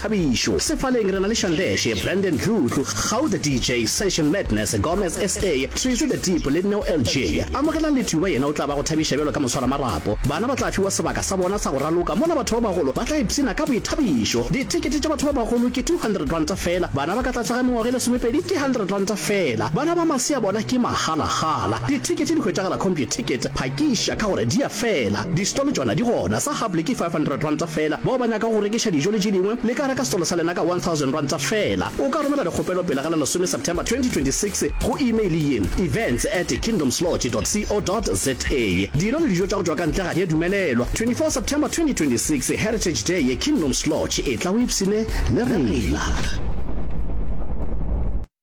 Thabišo, Sefaleng re na le Shandeshe, Brandon Dludlu, Kgau the DJ, Session Madness, Gomez SA, Treasy the Deep le Neo LJ. Amogelang Lethuba yena o tla ba go thabiša bjalo ka moswaramarapo. Bana ba tla fiwa sebaka sa bona sa go raloka mola batho ba bagolo ba tla ipshina ka boithabišo. Dithekete tša batho ba bagolo ke R200 feela, bana ba ka tlase ga mengwaga e lesomepedi ke R100 feela. Bana ba masea bona ke magalagala. Dithekete di hwetšagala Computicket. Phakiša ka gore di a fela. Distolo tšona di gona. Gape le ke R500 feela. Bao ba nyakago go rekiša dijo le tše dingwe, le ka reka setolo sa lena ka R1,000 feela. O ka romela dikgopelo pele ga la lesome September 2026 go imeile ye, events at kingdomslodge.co.za. Dino le dijo tša go tšwa ka ntle ga di a dumelelwa. 24 September 2026, Heritage Day ye Kingdoms Lodge, etla o ipshine le rena.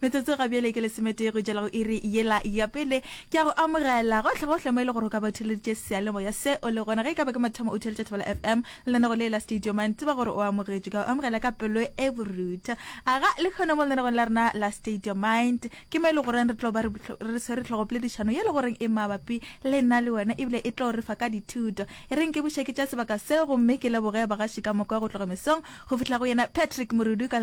Metsotso ga bjale ke lesometee go tšwela go iri yela ya pele. Ke a go amogela gohlegohle mo e le gore o ka ba o theleditše seyalemoya se o le gona. Ge e ka ba ke mathomo o theletša Thobela FM lenanegong le la Studio Man, tseba gore o amogetšwe. Ke a go amogela ka pelo e borutho. Aga le kgono mo lenanegong la rena la Studio Mind. Ke mo e le goreng re tlo ba re swere tlhogopoledišano ye le goreng e mabapi le nna le wena ebile e tlo re fa ka dithuto. E reng ke buše ke tša sebaka se gomme ke leboge bagaši ka moka go tloga mesong go fihla go yena Patrick Morudu ka